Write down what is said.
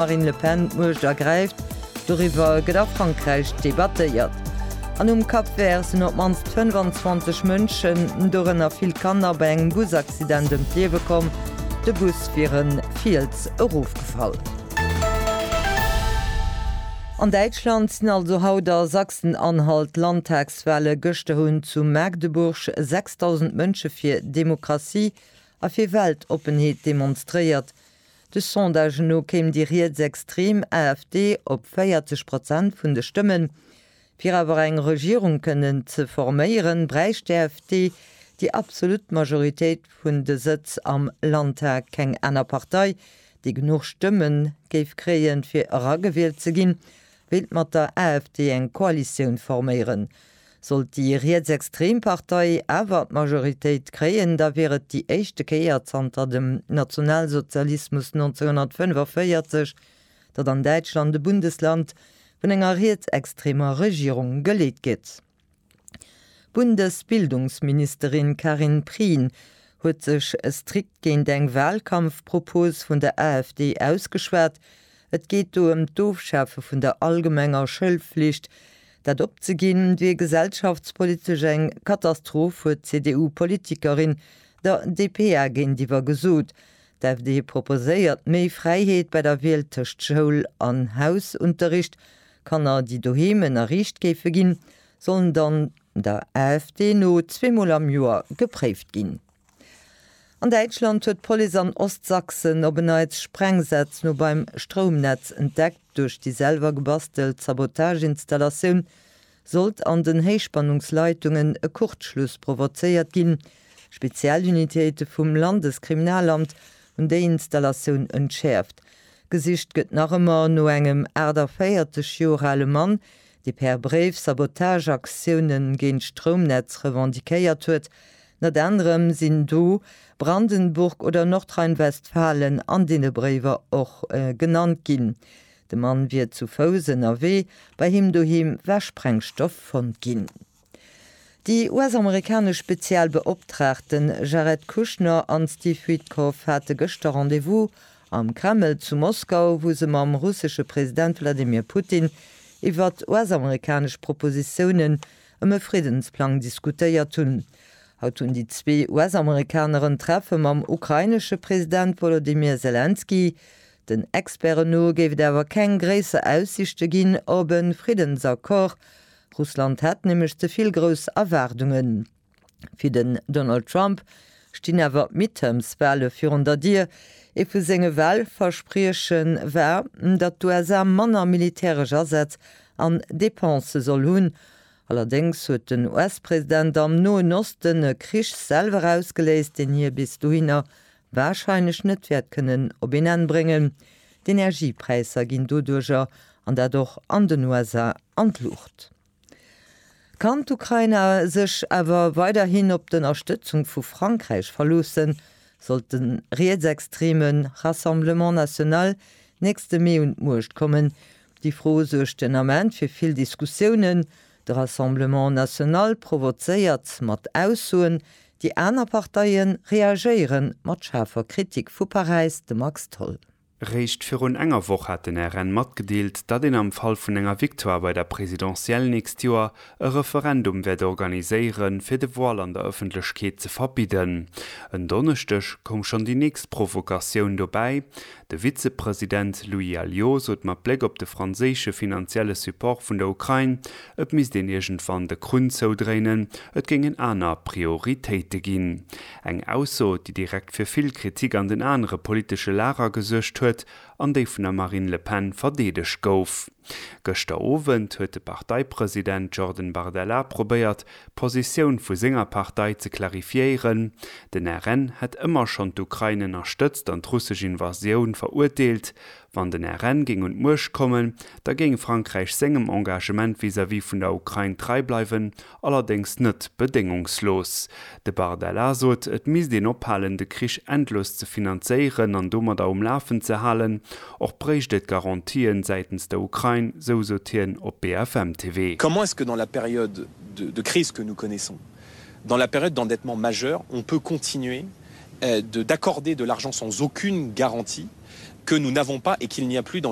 Marine Le Pen d'Muecht ergräift, doriwwer gëtt a Frankräich debattéiert. An um Cap Vert sinn op d'mannst 25 Mënschen, dorënner vill Kanner, bei engem Busaccident ëm d'Liewe komm. De Bus wier e Fiels erofgefall. An Däitschland sinn also haut a Sachsen-Anhalt d'Landtagswale. Gëschter hunn zu Magdeburg 6.000 Mënsche fir Demokratie a fir Weltoppenheet demonstréiert. De Sondage no kéim déi rietsextrem AfD op 40 Prozent vun de Stëmmen. Fir awer eng Regierung kënnen ze forméieren, bräicht d'AfD déi absolut Majoritéit vun de Sëtz am Landtag. Keng aner Partei, déi genuch Stëmme géif kréien, fir eragewielt ze ginn, wéilt mat der AfD eng Koalitioun forméieren. Sollt déi rietsextrem Partei awer d'Majoritéit kréien, da wier et déi éischte Kéier zanter dem Nationalsozialismus 1945, datt an Däitschland e Bundesland vun enger rietsextremer Regierung geleet gétt. D'Bundesbildungsministerin Karin Prien huet sech strikt géint eng Wahlkampfpropos vun der AfD ausgeschwat. Et geet do ëm d'Ofschafe vun der allgemenger Schoulflicht, Dat opzeginn, wier gesellschaftspolitesch eng Katastroph, huet d'CDU-Politikerin der dpa géintiwwer gesot. D'AfD proposéiert méi Fräiheet bei der Wiel tëscht Schoul an Hausunterricht. Kanner, déi doheem ënnerriicht géife ginn, sollen dann der AfD no zweemol am Joer gepréift ginn. An Däitschland huet d'Police an Ostsachsen op en Neits Sprengsätz no beim Stroumnetz entdeckt. Duerch déi selwer gebastelt Sabotageinstallatioun sollt an den Héichspannungsleitungen e Kurzschluss provozéiert ginn. Spezialunitéite vum Landeskriminalamt hunn déi Installatioun entschäerft. Gesicht gëtt nach ëmmer no engem 48 Joer ale Mann, dee per Bréif Sabotageaktiounen géint d'Stroumnetz revendiquéiert huet. Net anerem sinn do Brandenburg oder Nordrhein-Westfalen an deene Bréiwer och genannt ginn. De Mann wier zu Fouss ënnerwee, bei him doheem war Sprengstoff fonnt ginn. Déi US-amerikanesch Spezialbeoptraagten Jared Kushner an Steve Witkoff hate gëschter Rendez-vous am Kreml zu Moskau, wou se mam russesche President Wladimir Putin iwwert US-amerikanesch Propositiounen ëm e Friddensplang diskutéiert hunn. Haut hunn déi zwee US-Amerikaneren Treffe mam ukrainesche President Wolodymyr Selenskyj. Den Experten no géif et awer keng gréisser Aussiichte ginn op e Friddensaccord. Russland hätt nämlech ze vill grouss Erwaardungen. Fir den Donald Trump stinn awer d'Midterms-Wahle virun der Dier. Ee vu senge Wahlversprieche war, datt d'USA manner militäresch Asätz an Depensë soll hunn. Allerdéngs huet den US-President am Noen Osten e Krich selwer ausgeléist, deen hie bis dohinner warscheinlech net wäert kënnen op een Enn bréngen. D'Energiepräisser ginn doduerger, an dat och an den USA, an d'Luucht. Kann d'Ukraina sech awer weiderhin op d'Ënnerstëtzung vu Frankräich verloossen, sollt de rietsextreme Rassemblement National nächste Mee un d'Muecht kommen? Déi Fro suergt den Ament fir vill Diskussiounen. De Rassemblement National provozéiert mat Aussoen, déi aner Parteie reagéiere mat schaarfer Kritik vu Paräis, de Max Tholl. Réischt virun enger Woch hat den RN matgedeelt, datt een am Fall vun enger Victoire bei der Presidentielle nächst Joer e Referendum wäert organiséiere fir de Voile an der Ëffentlechkeet ze verbidden. En Donneschdeg koum schonn déi nächst Provokatioun dobäi, De Vizepresident Louis Alliot sot mat Bléck op de franséische finanzielle Support vun der Ukrain, et misst een iergendwann de Krunn zoudréinen, et géingen aner Prioritéite ginn. Eng Ausso, déi direkt fir vill Kritik an den anere politesche Lager gesuergt huet an déi vun der Marine Le Pen verdeedegt gouf. Gëschter Owend huet de Parteipresident Jordan Bardella probéiert, d'Positioun vu senger Partei ze clarifiéieren. Den RN hätt ëmmer schonn d'Ukrain ënnerstëtzt an d'russesch Invasioun verurteelt. Wann den RN géing un d'Muecht kommen, da géing Frankräich sengem Engagement vis-à-vis vun der Ukrain trei bleiwen, Allerdéngs net bedéngungslos. De Bardella sot, et misst een ophalen, de Krich endlos ze finanzéieren an domadder um Lafen ze halen. Och bréicht et Garantien säitens der Ukrain, sou sot hien op BFM TV. Comment est-ce que dans la période de crise que nous connaissons, dans la période d'endettement majeur, on peut continuer d'accorder de l'argent sans aucune garantie que nous n'avons pas et qu'il n'y a plus dans les